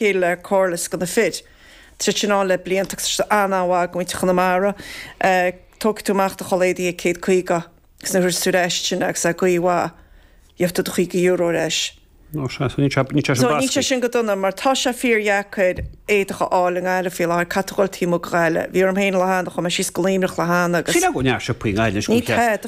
chéile le Corless do na fir. Tá siad ann le blianta agus tá siad an-an-mhaith do mhuintir Chonamara, tógfaidh tú amach do chulaith éadaigh ar chéad caoga agus nuair is tú ar ais ansin agus é i gcaoi mhaith, gheobhaidh tú do chaoga euro ar ais. Nó sea, so níl sé níl sé sin So níl sé bascaí. sin go dona mar tá sé fíor dheacair éadach a fháil i nGaillimh faoi láthair, caithfidh tú dul taobh amuigh de Ghaillimh. Bhí orm féin Dé hAoine, chuaigh mé síos go Luimneach Dé hAoine agus Sin agam neart siopaí i nGaillimh leis go Ní mbeadh cead.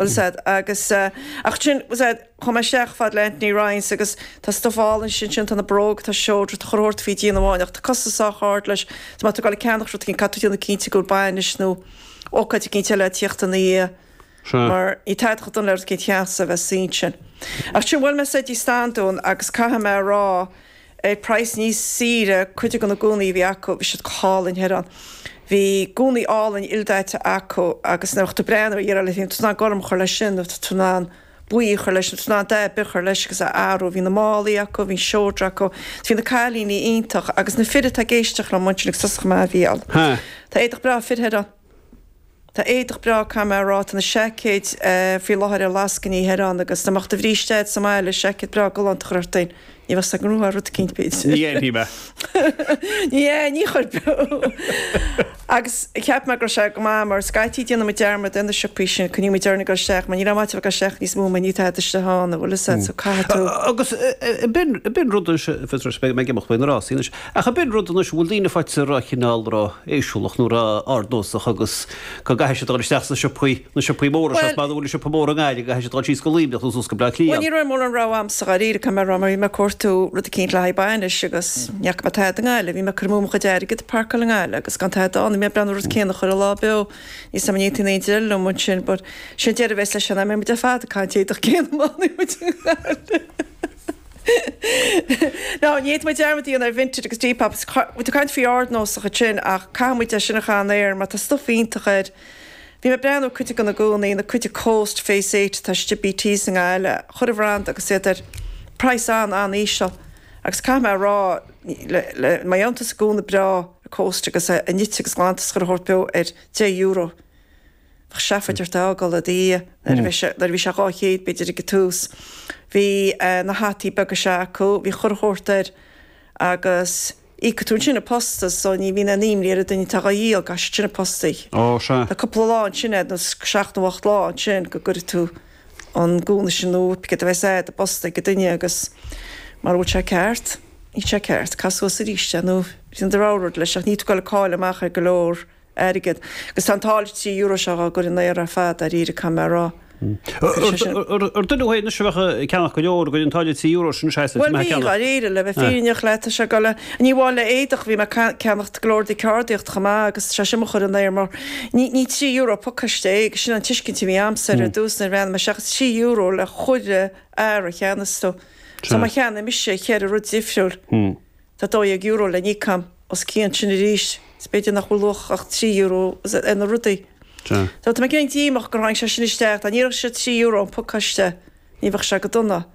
Well said, agus, ach sin, well said, chuaigh mé isteach fad le Anthony Ryan's agus tá stuff álainn istigh ansin, tá na bróga, tá seodra, tá chuile shórt faoi dhíon amháin ach tá costas sách ard leis, so má tá tú ag gabháil ag ceannach rud eicínt, caithfidh tú déanamh cinnte go bhfuil bainis nó ócáid eicínt eile ag tíocht ina dhiaidh mar níl tada chomh dona le rud eicínt deas a bheith suí ansin. Ach sin, bhuail mé soir tigh Standún agus caithfidh mé a rá, ar praghas níos saoire cuid de na gúnaí a bhí acu, bhí siad go hálainn thoir ann. Bhí gúnaí álainn ildaite acu agus nuair a bheadh tú ag breathnú ar iarraidh, bhí tú in ann gorm a chur leis sin, nó bhí tú in ann buí a chur leis, nó bhí tú in ann dath ar bith a chur leis agus é a athrú. Bhí na málaí acu, bhí an seodra acu. Bhí na cailíní iontach agus na fir atá ag éisteacht liom ansin ag sos a choimeád bhí ann. Tá éadach breá fir thoir ann. Tá éadach breá caithfidh mé a rá, tá na seaicéid faoi láthair ar lascainí thoir ann agus dá mbeadh do bhríste a'd sa mbaile, seaicéad breá galánta a chur ort féin, ní bheadh 's ag ngrúáil rud eicínt, b'fhéidir. Ní dhéanfaidh mé. Ní hea, ní chuirfeadh. Agus cheap mé go raibh sé go maith mar scaití déanann muid dearmad ar na siopaí sin, coinníonn muid orainn ag dul isteach mar níl aon mhaith a dhul isteach níos mó mar níl tada istigh ann, an bhfuil 'fhios a'd, so caithfidh tú. Agus b'in rud, fhios a'd, mé ag imeacht ó na rásaí anois. Ach ab in rud anois go bhfuil daoine faighte ró- chineál ró-éisiúlach nó ró-ardnósach agus go gcaithfidh siad dul isteach sna siopaí, na siopaí móra, seans Bhuel, maith go bhfuil na siopaí móra i nGaillimh, go gcaithfidh siad dul síos go Luimneach nó suas go Bleá Bhuel, Cliath. ní raibh mórán rogha a'msa dáiríre, dá mbeadh rogha, bhí mé ag cuartú rud eicínt le haghaidh bainis agus ní fhaca mé tada i nGaillimh, bhí mé ag cur amú mo chuid airgead ag parkáil i nGaillimh agus gan tada ann, bhí mé ag breathnú ar an rud céanna chuile lá beo, níl 'fhios a'm an aontaíonn aon duine liom ansin but sin deireadh a bheas leis an am, beidh muid ar fad ag caitheamh an éadach céanna má fhanfaidh muid i nGaillimh. Ná ní fhéadfaidh muid dearmad a dhéanamh ar Vinted agus Depop, is muid ag caint faoi ardnósach ansin ach caithfidh muid é sin a chaitheamh san aer mar tá stuif iontach air. Bhí mé ag breathnú ar cuid de na gúnaí, na cuid de Coast, Phase 8 atá istigh i BT's i nGaillimh, chuile bhranda agus iad ar praghas an-an-íseal agus caithfidh mé a rá le, le, má fhaigheann tusa gúna breá ar Coast agus é nite agus glanta is chuile shórt beo ar deich euro. Bheadh seafóid ort é a fhágáil i do dhiaidh nuair a bhí sé, nuair a bhí sé dhá chéad, b'fhéidir, ag an tús. Bhí na hataí beaga seo acu, bhí chuile shórt air agus íocfaidh tú ansin an posta so ní bhíonn aon imní ar an duine atá dhá dhíol, déanann siad sin a phostáil. Ó, sea. Tá cúpla lá ansin agat, nó seacht nó ocht lá ansin go gcuirfidh tú an gúna sin nó cad a bheas agat i do phosta ag an duine agus mara bhfuil sé ceart, níl sé ceart, caith suas aríst é nó déan do rogha rud leis ach níl tú ag dul ag cailleadh amach ar go leor airgead. Agus tá an táille trí euro seo do mo chur in aer ar fad, dáiríre, caithfidh mé a rá. Chuir sé sin. Ar dhuine anois a bheadh ag ceannacht go leor, a gcuid, an táille trí euro sin anois a's go mbeadh ag ceannacht. Bhuel, bhí, dháiríre, le bheith fírinneach leat, tá sé ag dul le, ní amháin le éadach, bhí mé ag ceannacht go leor de cheardaíocht chomh maith agus tá sé sin do mo chur in aer mar ní, ní trí euro an pacáiste é agus sin an tuiscint a bhí a'msa ar dtús nuair a tháinig sé isteach, is trí euro le chuile earra a cheannaíonns tú. So má cheannaímse cheithre rud difriúil. Tá €12 le n-íoc a'm os cionn sin arís, agus b'fhéidir nach bhfuil luach ach €3 ar na rudaí. So, tá mé cineál díomách gur tháinig sé sin isteach, dá n-iarrfadh siad €3 an pacáiste, ní bheadh sé chomh dona.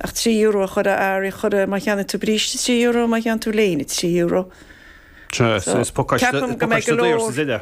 Ach €3 a chur ar earraí a chur, má cheannaíonn tú bríste, €3, má cheannaíonn tú léine, €3. Sea, is pacáiste daor sa zile.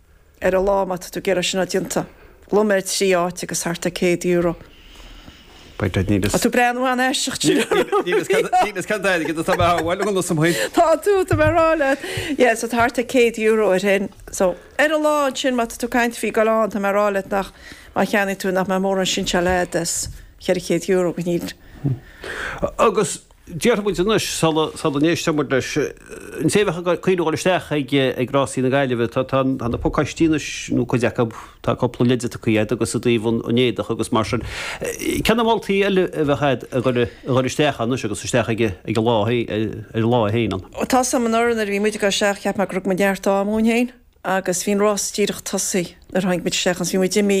Ar a lá má tá tú ag iarraidh sin a déanta, lón ar thrí áit agus tá thart ar céad euro. Beidh duit, níl fhios. Tá tú breá nó an-aisteach, Jim. Níl fhios cad, níl fhios cad aige, tá mé thar a bhaile dhom, sa mhaoin. Tá tú, tá mé ag rá leat. Yeah, so tá thart ar céad euro ar shin. So, ar a lá ansin má tá tú ag caint faoi geallta, tá mé ag rá leat nach, má cheannaigh tú, nach mbeadh mórán sóinseáil agat as cheithre chéad euro. Agus Déarfaidh muid anois, sula n-éistfidh muid leis, an té a bheadh ag cuimhneamh a ghoil isteach ag Rásaí na Gaillimhe. Tá na pacáistí anois, nó cuid acu, tá cúpla leide tugtha agat agus i dtaobh an éadaigh agus mar sin. Cé na moltaí eile a bheadh agat ag goil isteach anois agus isteach ag an lá féin ann? Tá, so anuraidh, nuair a bhí muid ag dul isteach, cheap mé go raibh neart ama againn féin agus bhí an rás díreach tosaithe nuair a tháinig muid isteach agus bhí muid imithe.